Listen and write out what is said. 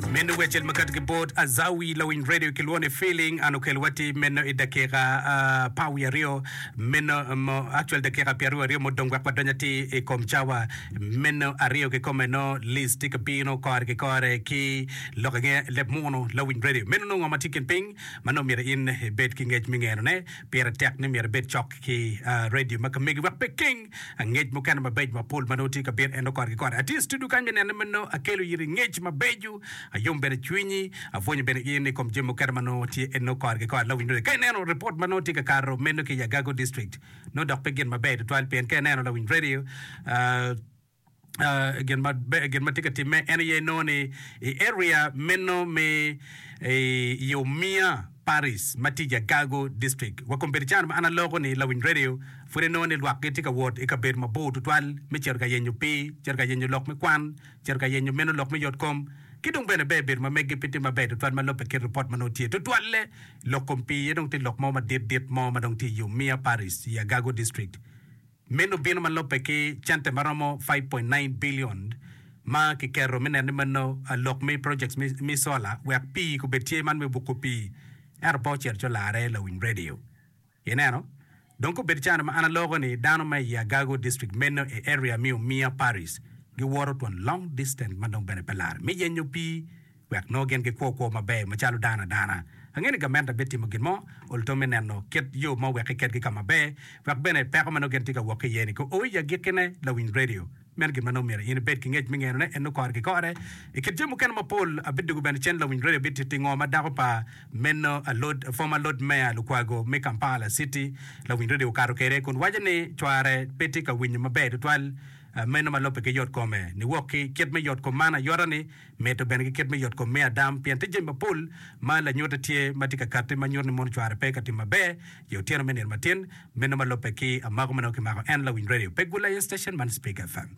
Meno wecel makato ki bot Azawi lawiny radio kilwone feeling an okelo wati meno i dakika uh, pa wi aryo meno mo actual dakika pi aryo aryo mudong wek wadony ati i kom cawa meno aryo ki kome no list ti ka bino kore ki kore ki lok inge leb muno lawiny radio meno nongo ma ti kin piny ma nongo myero in ibed ki ngec mi ngeno ne Pire tek ni myero ibed cok ki redio ma ka megi wek pe ikeng ngec mukene mabeco ma pol ma nongo tye ka bino ento kore ki kore. Atye i studio kany me nene ma nongo akelo iri ngec mabeco, ayom bene cwinyi, abwonyo bene in i kom jami mukene ma nongo tye nongo kore ki kore. Lawiny Radio, ka ineno ripot ma nongo tye ka kato meno ki i Agago District, nongo dok pe gin maber tutwal pien ka ineno Lawiny Radio, gin ma gin ma tye ka timme en aye nongo ni i area meno me i Omiya Paris ma tye i Jagago District. Wa kombeddi can ma an aloko ni Lawiny Radio pud inongo ni lwak gitye ka wot i kabedo mabor tutwal me cito ka yenyo pii, cito ka yenyo lok me kwan, cito ka yenyo meno lok me yot kom ki dong bene ber bedo ma meggi pe tye maber tutwal ma lobbe kit ripot ma nongo tye. Tutwalle lok kom pii aye dong tye lok mo madit dit mo ma dong tye i Omiya Paris i Jagago District. Meno bino ma lubbe ki cente ma romo five point nine billion ma kiketo me neno ni meno lok me projects me solar wek pii kubed tye man me buko pii ento pe ocito co larre lawiny radio. Ineno? Dong kubed cani ma an aloko ni dano ma i Agago district meno i area me Umia Parish giwoto twon long distance ma dong bene pe larre me yenyo pii wek nongo gin gikwo kwo maber macalo dano adana. Angeyo ni gamente bitimo gin mo ol tam me neno kit yo ma owek iketgi ka maber, wek bene peko ma nongo gin tye ka wok ki iye-ni ko o i agikkine. Lawiny redio, meno gin ma nongo myero in ibed ki ngec me ngenone, en nongo kore ki kore i kit jami mukene mapol. Abidwogo bene cen lawiny redio bit tingo ma dako pa meno alod, former Lord Mayor Lukwago me Kampala City, lawiny redio okato kwede kun waco ni cware pe tye ka winyo maber tutwal meno ma lobbe ki yot kome niwok ki kit me yot kom man ayota ni Medde bene ki kit me yot kom me Adam, pien tye jami mapol ma lanyute tye ma tye ka katti ma nyuto ni mono cware pe ka tim maber i otyeno me nino matin meno ma lubbe ki amako ma nongo kimako en lawiny radio pe gul aye station man Speak FM.